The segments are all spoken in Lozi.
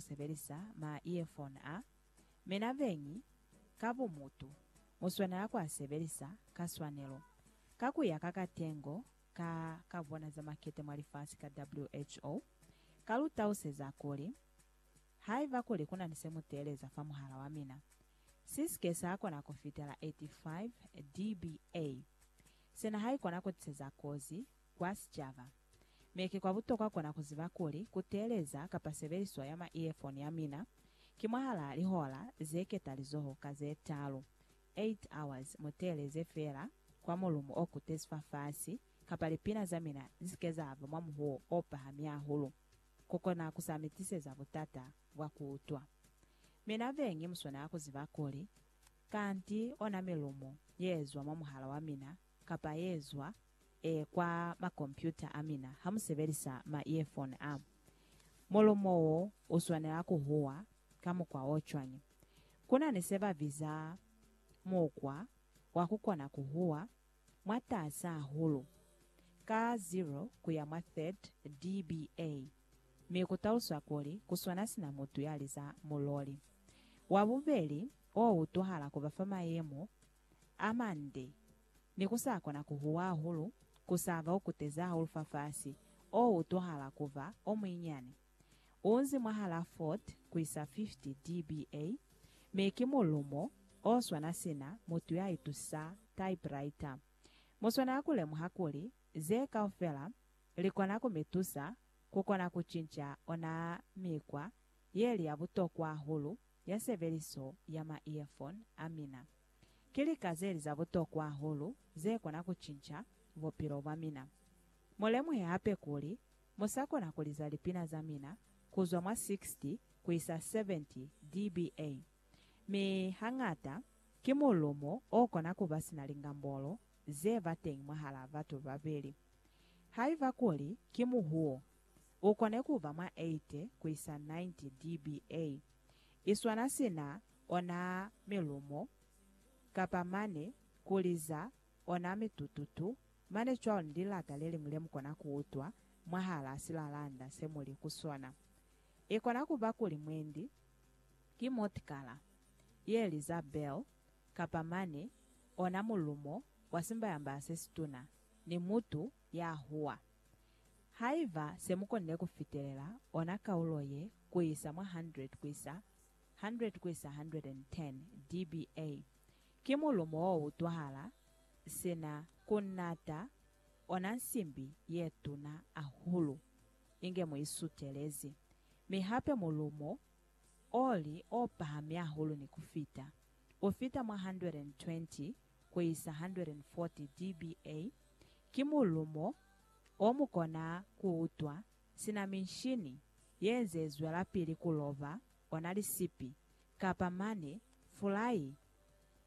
ku sebelisa ma earphone a mina beñi ka bumutu, mu swanela ku a sebelisa ka swanelo, ka ku ya ka katengo ka ka bona za makete mwa lifasi ka WHO. Ka lu tauseza kuli, Haiba kuli ku na ni se mu teeleza fa muhala wa mina, si si ke sa kona ku fitela 85 dBA, sina haikona ku tiseza kozi Kwa sicaba, mi ki kwa butokwa kona ku ziba kuli ku teeleza kapa sebeliso ya ma-earphone ya mina ki mwahalaa lihola ze ketalizoho ka ze talu, eight hours, mu teeleze feela kwa mulumo o kutezi fafasi kapa lipina za mina li si ke za ba mwa muhuwo o pahami hahulu ku kona ku sa mi tiseza butata bwa ku utwa. Mina be ngi muswanela ku ziba kuli kanti ona milumo ye ezwa mwa muhala wa mina kapa ye zwa e kwa makompyuta a mina ha mu sebelisa ma-earphone a. Mulumo wo u swanela ku huwa ka mukwa o cwañi? Ku na ni se ba biza mukwa wa ku kona ku huwa mwatas'a hahulu, ka 0 ku ya mwa 30 dBA, mi ku taluswa kuli ku swana sina mutu ya liza muloli. Wa bubeli o utwahala ku ba fa mayemo a mande, ni ku sa kona ku huwa hahulu, ku sa ba o kutezi hahulu fafasi, o utwahala ku ba o muinyani. U nzi mwahalaa 40 ku isa 50 dBA, mi ki mulumo o swana sina mutu ya itusa typewriter. Mu swanela ku lemuha kuli ze kaufela li kona ku mi tusa ku kona ku cinca ona mikwa ye li ya butokwa hahulu ya sebeliso ya ma-earphone a mina ki lika ze li za butokwa hahulu ze kona ku cinca bupilo bwa mina. Mu lemuhe hape kuli mu sa kona ku liza lipina za mina ku zwa mwa 60 ku isa 70 dBA, mi hañata ki mulumo o kona ku ba sina lingambolo ze ba teñi mwahal'a batu babeli. Haiba kuli ki muhuo u kone ku ba mwa 80 ku isa 90 dBA. I swana sina ona milumo, kapa mane ku liza ona mitututu, mane cwalo ni lilata le liñwi le mu kona ku utwa mwahalaa silalanda se mu li ku sona. I kona ku ba kuli mwendi ki motikala ye liza bell, kapa mane ona mulumo wa simbayambaya se situna, ni mutu ya huwa. Haiba se mu konile ku fitelela ona kaulo ye ku isa mwa 100 ku isa 100 ku isa 110 dBA, ki mulumo wo utwahala sina ku nata ona nsimbi ye tuna ahulu inge mu i sutelezi, mi hape mulumo o li o pahami ahulu ni ku fita, u fita mwa 120 ku isa 140 dBA, ki mulumo o mu kona ku utwa sina minshini ye nze zwelapili ku loba ona lisipi, kapa mane fulai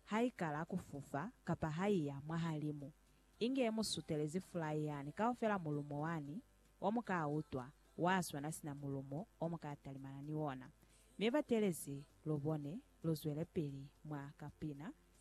ha i kala ku fufa kapa ha i ya mwahalimu, inge mu sutelezi fulai yani kaufela mulumo wani o mu ka utwa wa swana sina mulumo o mu ka talimana ni ona. Mi batelezi lubone lu zwelepili mwa kapina